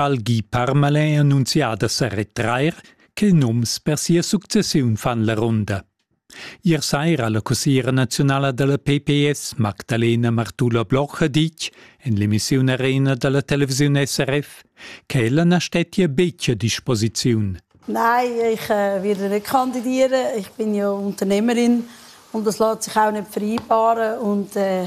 al Guy Parmalin annunzià da sa retrair, che nums per sia successiun fan la runda. Ier saira la cussiera nazionala dalla PPS Magdalena Martula Bloch ha ditg, en l'emissiun Arena dalla televisiun SRF, che ella na stettia betg a disposiziun. Nein, ich äh, werde nicht kandidieren. Ich bin ja Unternehmerin und das lässt sich auch nicht vereinbaren. Und äh,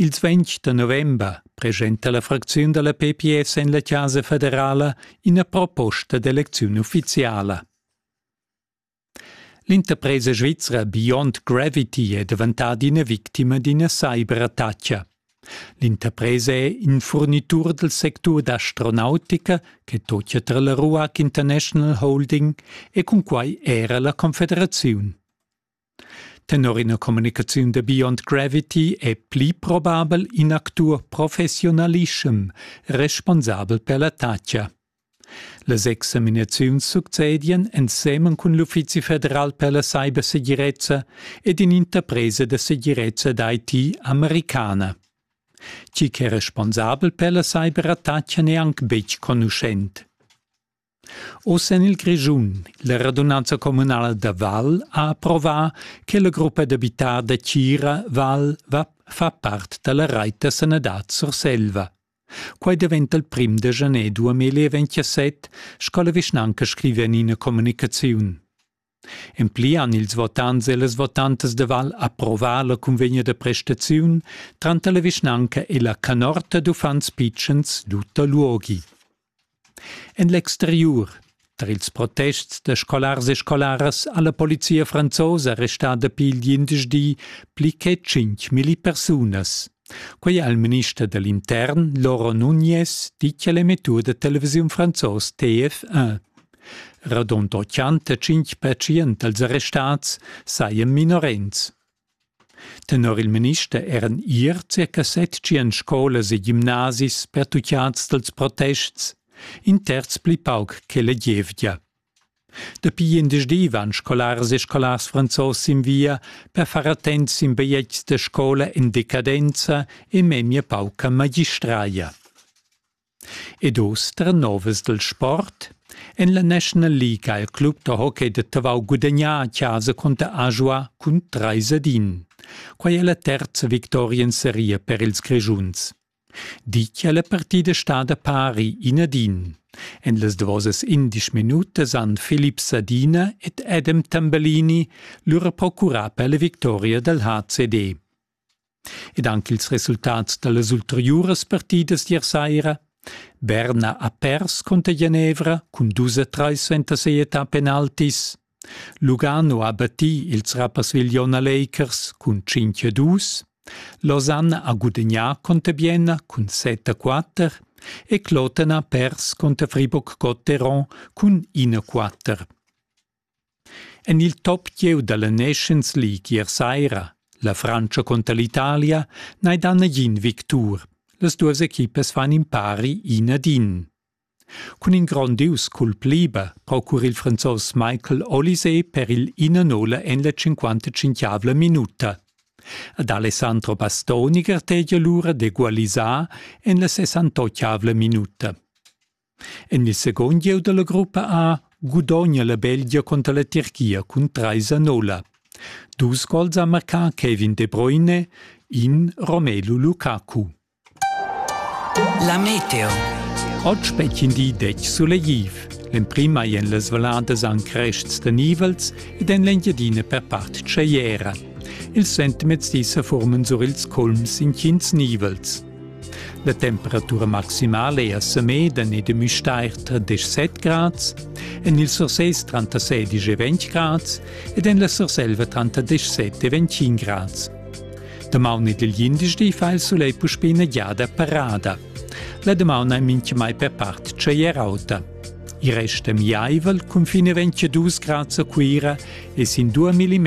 Ils ventg da november presenta la fracziun dalla PPS en la Chasa federala ina proposta d'elecziun ufficiala. L'interpresa svizra Beyond Gravity è daventada ina victima d'ina cyberattacca. L'interpresa è in furnitur del sectur d'astronautica che tocia tra la Ruac International Holding e cun quai era la Confederaziun. Tenor ina communicaziun da Beyond Gravity è pli probabel in actur professiunalischem responsabel per la tatgia. Las examinaziuns succedien ensemen cun l'Uffizi federal per la cybersegirezza ed in'interpresa da segirezza d'IT americana. Chi che è responsabel per la cyberattacca n'è anc betg conuschent. Oz en il Grischun. La radunanza communala da Val ha approvà che la gruppa d'abitar da Tgira Val va fa part da la rait da sanadad Surselva. Quai daventa il prim da janer 2027, sco la vischnanca scriva en ina communicaziun. En pli han ils votants e las votantas de Val approvà la cunvegna da prestaziun tranter la vischnanca e la canorta d'uffants pitschens Luther Luogi. En l'exteriur Tar ils protests da scolars e scolaras ha la polizia franzosa restada dapi il quindesch di pli che milli persunas. Quei ha il minister dall'intern Laurent Nunez dit alla mettur da televisiun franzos TF1. Radund 85 pertschient dals arrestats sajan minorens. Tenor il minister eran ier circa 700 scolas e gimnasis pertuccads dals protests, in terz pli pauc che la gievgia. Dapi indisdi van scolaras e scolars franzos sin via per far attents sin bigliets da scola en decadenza e memia pauca magistraia. Ed uss trenovas dil sport. En la National League ha il club da hockey da Tavau gudagnà a casa cunter Ajoa cun trais ad in. Quai è la terza victoria en seria per ils Grischuns. Ditg è la partida stada pari in ad in. En las davosas indesch minutas han Filip Sadina ed Adam Tambellini lura procurà per la victoria dal HCD. ed anc ils resultats da las ulteriuras partidas d'ier saira berna ha pers cunter genevra cun dus e trais suenter si'età penaltis lugano ha battì ils rapperswil-jon a lakers cun cinc e dus lausanne ha gudagnà cunter bienna cun set a quatter e cloten ha pers cunter friburg gotteron cun in a quatter En il top gieu da la Nations League ier saira, la Frantscha cunter l'Italia, n'hai dà nagin victur. Las duas equipas fan impari in ad in. Cun in grondius culp liber procura il Franzos Michael Olise per il 1-0 en la 55 minuta. Ad Alessandro Bastoni gartegia lura d'egualisar en la 68 minuta. En il secund gieu dalla gruppa A gudogna la Belgia conter la Tirchia cun treis a nolla. Dus gols ha marcà Kevin De Bruyne, in Romelu Lukaku. La meteo. Oggi spettin di dec suleghiv. L'emprima è en las valadas an crests da nivels ed en l'Engiadina per part tscheiera. Il sentimez di sa formen sur ils culms in cins nivels. La temperatura maximala è a Semeden ed a Müstair 37 grads, en il Sursés 36 e 20 grads ed en la Surselva 37 e 21 grads. Damaun ed il glindesdi fa il sulegl puspè ina giada parada. La damaun è mintgamai per part tschaier auta. Il rest è miaivel, cun fine 22 grads a Cuira e sin 2 mm